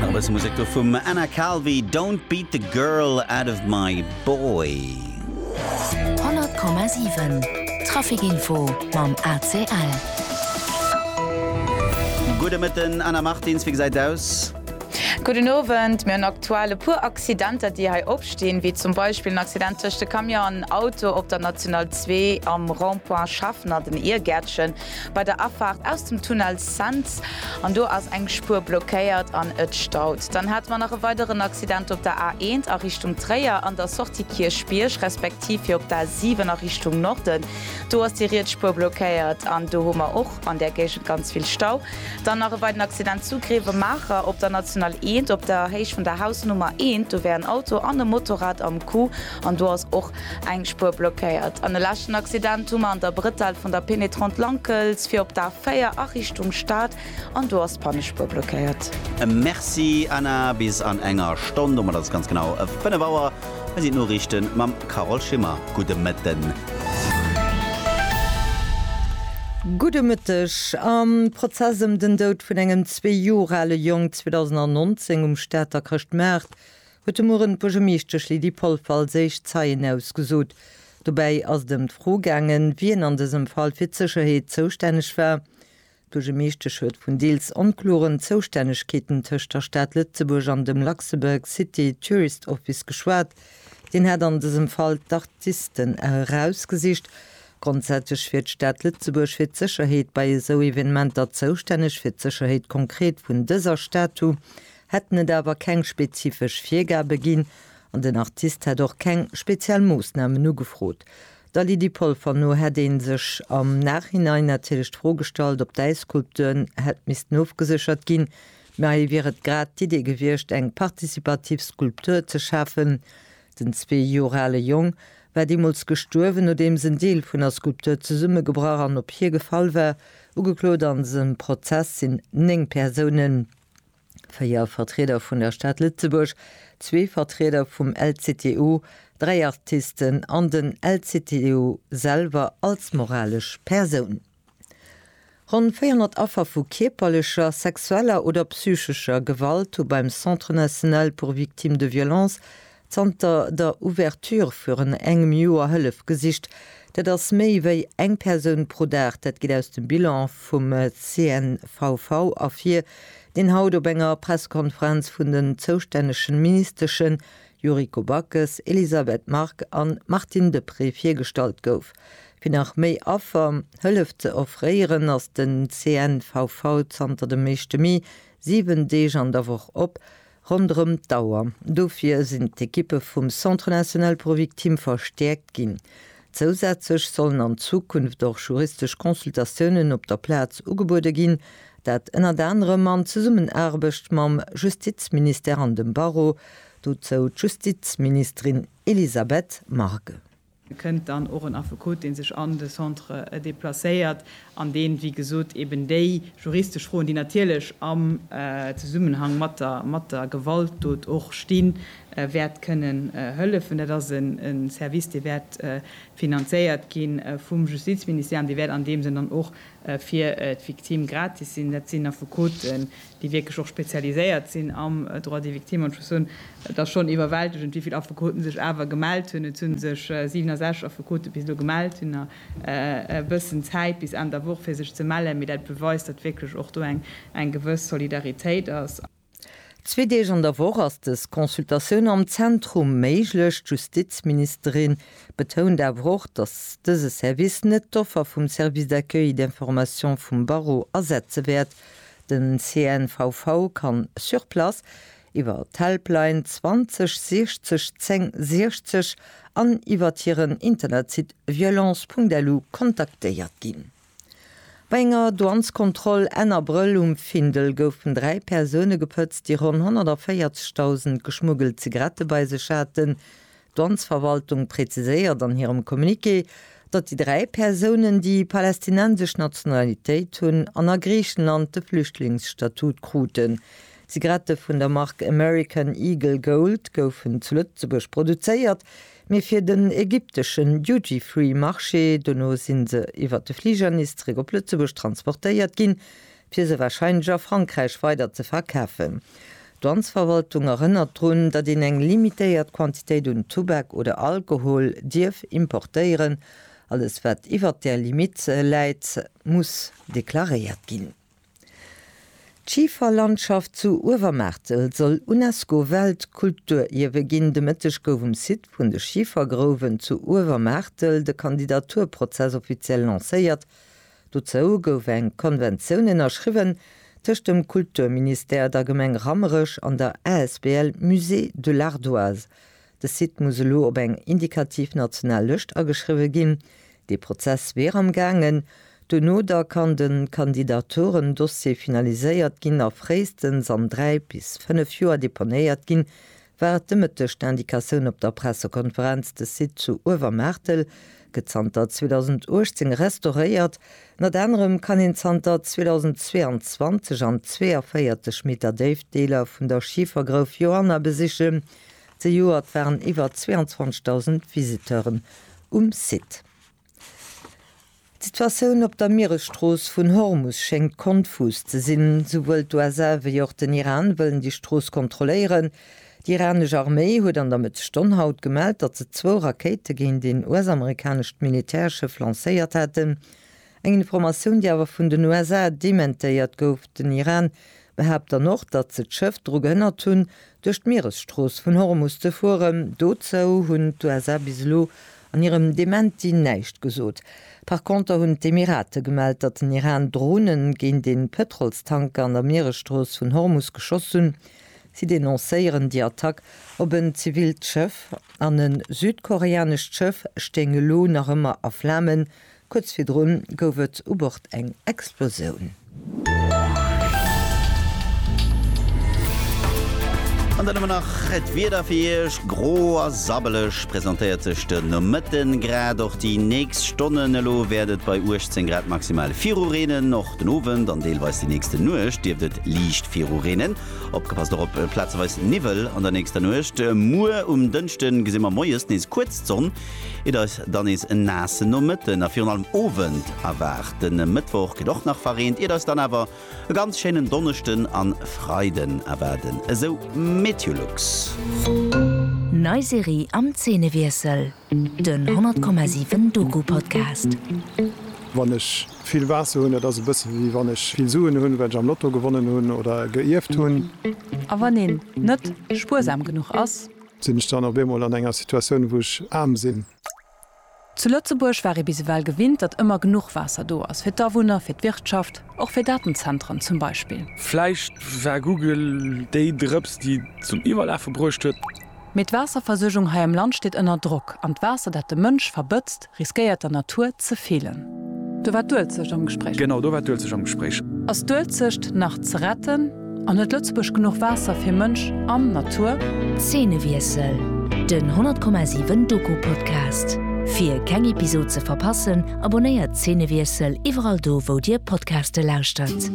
Nach e bësse Musek do vum Anna Calvi, Don't beat the girl out of my boy. 100,7 Traficinfo mam ACL. Gudde Mëtten, Anna Martins, wéi gesäit et aus? Gudden Owend, mir hunn aktuell e puer Accidenter déi hei opstinn, wéi zum Beispill en Accident tëscht e Camion an Auto op der National zwee am Rond-point Schaffner, den Iergäertchen. Bei der Afaart aus dem Tunnel Cents, an do ass eng Spuer blockéiert an et staut. Dann hate mer nach e weideren Accident op der A1 a Richtung Tréier an der Sortie Kierchbierg, respektiv fir op d'A7 a Richtung Norden. Do ass déi riets Spuer blockéiert an do hu mer och an där Géigend ganz vill Stau. Dann nach e weiden Accident zu Grevemaacher op der National 1, op der Héicht vun der Hausnummer 1. Do wär en Auto an e Motorrad am Coup. An do ass och eng Spuer blockéiert. An e leschten Accident hu mer an der Brettell vun der Pénétrante Lankels fir op d'A 4 a Richtung Stad. An do ass d'Pannespuer blockéiert. Merci Anna, bis an enger Stonn, domat ass et ganz genau 5 Auer, hei sinn d'Noriichten mam Carole Schimmer. Gudde Mëtten. Gudde Mëtteg. Am Prozess ëm den Doud vun engem zwee Joer ale Jong 2019 um Stater Chrëschtmaart huet de Mueren d'Buergermeeschtesch Lydie Polfer als éischt Zeien ausgesot. Dobäi ass et ëm d'Fro gaangen, wien an dësem Fall fir d'Sécherheet zoustänneg war. D'Buergermeeschtesch huet vun deels onkloren Zoustännegkeeten tëscht der Stad Lëtzebuerg an dem Luxembourg City Tourist Office geschwat. Deen hätt an dësem Fall d'Artisten erausgesicht. Grondsätzlech wier d'Stad Lëtzebuerg fir d'Sécherheet bei esou Evenementer zoustänneg. Fir d'Sécherheet konkret vun dëser Statu hätten et awer keng spezifesch Virgabe ginn an den Artist hätt och keng speziell Moossnamen ugefrot. Der Lydie Polfer no hätt ee sech am Nachhinein natierlech d'Fro gestallt, ob d'Äisskulpturen hätt missten ofgeséchert ginn. Mä hei wier et grad d'Idee gewiescht, eng partizipativ Skulptur ze schafen. Den zwee Joer ale Jong war deemools gestuerwen, nodeems en Deel vun der Skulptur zesummegebrach an op hie gefall war. Ugeklot a sengem Prozess sinn néng Persounen. véier Vertrieder vun der Stad Lëtzebuerg, zwee Vertrieder vum LCTU, dräi Artisten an den LCTU selwer als moralesch Persoun. Ronn 400 Affer vu kierperlecher, sexueller oder psychescher Gewalt hu beim Centre national pour victimes de violences Zanter der Ouverture virun engem Joer Hëllef gesicht. Dat ass méi wéi eng Persoun pro Dag. Dat geet aus dem Bilan vum CNVV ervir, deen haut op enger Pressekonferenz vun den zoustännegen Ministeschen Yuriko Backes, Elisabeth Margue an Martine Deprez virgestallt gouf. Fir nach méi Affer Hëllef ze offréieren, ass den CNVV zanter dem éischte Mee 7 Deeg an der Woch op. Ronderëm d'Auer. Dofir sinn d'Ekippe vum Centre National pour Victimes verstäerkt ginn. Zousätzlech sollen an Zukunft och juristesch Consultatiounen op der Plaz ugebuede ginn, dat ënnert anerem an Zesummenaarbecht mam Justizministère an dem Barreau, dozou d'Justizministerin Elisabeth Margue. Et kënnt dann och en Affekot, dee sech an de Centre deplacéiert an deen, wéi gesot, eben déi juristesch Froen, déi natierlech am Zesummenhang mat der Gewaltdot och stinn, wäert kënnen hëllefen. Dat ass e Service, dee wäert finanzéiert gi vum Justizministère an dee wäert an deem Sënn dann och fir d'Victime gratis sinn. Dat sinn Affekoten, déi wierklech och spezialiséiert sinn am Droit des victimes, an ech muss soen, et ass schonn iwwerwältegend, wéi vill Affekoten sech awer gemellt hunn. Et hu sech 67 Affekote bis elo gemellt, hunn nach e bëssen Zäit bis Enn der Woch, fir sech ze mellen, mee dat beweist, datt wierklech och do eng gewëss Solidaritéit ass. Zwee Deeg an der Woch ass dës Consultatioun am Zentrum méiglech. D'Justizministerin betount awer och, datt dëse Service net d'Offer vum Service d'accueil et d'information vum Barreau ersetze wäert, Den CNVV kann sur place, iwwer d'Helpline 20 60 10 60 an iwwert hiren Internetsite violence.lu kontaktéiert ginn. Bei enger Douanskontroll Enn Abrëll um Findel goufen dräi Persoune gepëtzt, déi ronn 140.000 geschmuggelt Zigarette bei sech haten. D'Amtsverwaltung präziséiert an hirem Communiqué, datt déi dräi Persounen, déi palästinensesch Nationalitéit hunn an a Griichenland de Flüchtlingsstatut kruten. Zigarette vun der Mark American Eagle Gold goufen zu Lëtzebuerg produzéiert, mee fir den ägypteschen Duty-Free-Marché. Dono si se iwwer de Fliger nees zeréck op Lëtzebuerg transportéiert ginn, fir se warscheinlech a Frankräich weider ze verkafen. D'Douanesverwaltung erënnert drun, datt een eng limitéiert Quantitéit un Tubak oder Alkohol dierf importéieren. Alles wat iwwert där Limitt läit, muss deklaréiert ginn. D'Schiferlandschaft zu Uewermaartel soll UNESCO-Weltkulturierwe ginn. De Mëtteg gouf um Site vun de Schifergrouwen zu Uewermaartel de Kandidaturprozess offiziell lancéiert. Dozou gouf eng Konventioun ënnerschriwwen tëscht dem Kulturministère, der Gemeng Rammerech an der asbl Musée de l'Ardoise. De Site muss elo op eng indikativ national Lëscht ageschriwwe ginn. Dee Prozess wier am gaangen. Duerno da kann de Kandidaturen-Dossier finaliséiert ginn a fréistens an dräi bis fënnef Joer deponéiert ginn, war et de Mëtteg d'Indicatioun op der Pressekonferenz, de Site zu Uewermaartel gëtt zanter 2018 restauréiert. Ënnert anerem kann een zanter 2022 an 42 Meter Déift Deeler vun der Schifergrouf Joanna besichen. Zejoert waren iwwer 22.000 Visiteuren um Site. D'Situatioun op der Mieresstrooss vun Hormus schéngt konfus ze sinn. Souwuel d'USA wéi och den Iran wëllen déi Strooss kontrolléieren. Déi iranesch Arméi huet an der Mëttesstonn haut gemellt, datt se zwou Rakéite géint een US-amerikanescht Militärschëff lancéiert hätten. Eng Informatioun, déi awer vun den USA dementéiert gouf. Den Iran Behaapt dann och, datt se d'Schëff dru gehënnert hunn, duerch d'Mieresstrooss vun Hormus ze fueren. Dozou hunn d'USA bis elo an hirem Dementi näischt gesot. Par Konter hunn d'Emirate gemellt, datt den Iran Drone géint ee Pëtrolstanker an der Mieresstrooss vun Hormus geschoss hunn. Si denoncéieren déi Attack op en zivilt Schëff an e südkoreanescht Schëff stéing elo nach ëmmer a Flamen, Kuerz virdrun gouf et u Bord eng Explosioun. An dann hu mer nach d'Wieder fir Iech, gro a sabbeleg presentéiert sech de Nomëtte grad. Och déi nächst Stonnen elo wäert et bei 18 Grad maximal viru reenen. Och den Owend an deelweis déi nächste Nuecht dierft et liicht viru reenen. Opgepasst och op plazeweis Niwwel an der nächster Nuecht. Muer um Dënschde gesi mer moies nees kuerz d'Sonn. Et eis dann nees en naassen Nomëtten a virun allem Owend erwaart. Den Mëttwoch gëtt och nach verreent, iert eis dann awer e ganz schéinen Donneschden an Freiden erwaarden, esou Meteolux. Nei Serie am Zeenewiessel, den 100,7 Doku-Podcast. Wann ech vill Waasser hunn, dat ass e bësse wéi wann ech vill Suen hunn, well ech am Lotto gewonnen hunn oder geierft hunn. A wann een net spuersam genuch ass, Sinn ech dann op eemol an enger Situatioun, wou ech aarm sinn? Zu Lëtzebuerg war ee bis ewell gewinnt, datt ëmmer genuch Waasser do ass, fir d'Awunner, fir d'Wirtschaft, och fir Datenzentren zum Beispill. Vläicht war Google déi Drëps, déi et zum Iwwerlafe bruecht huet. Mee d'Waasserversuergung hei am Land steet ënner Drock, an d'Waasser, dat de Mënsch verbëtzt, Riskéiert der Natur ze feelen. Do war d'Uelzecht am Gespréich. Genau, do war d'Uelzecht am Gespréich. Ass d'Uelzecht nach ze retten an huet Lëtzebuerg genuch Waasser fir Mënsch an Natur? Zeenewiessel, Den 10,7 Doku Podcast. Fir keng Episod ze verpassen, abonnéiert Zeenewiessel iwwerall do wou dir Podcaste lauschtert.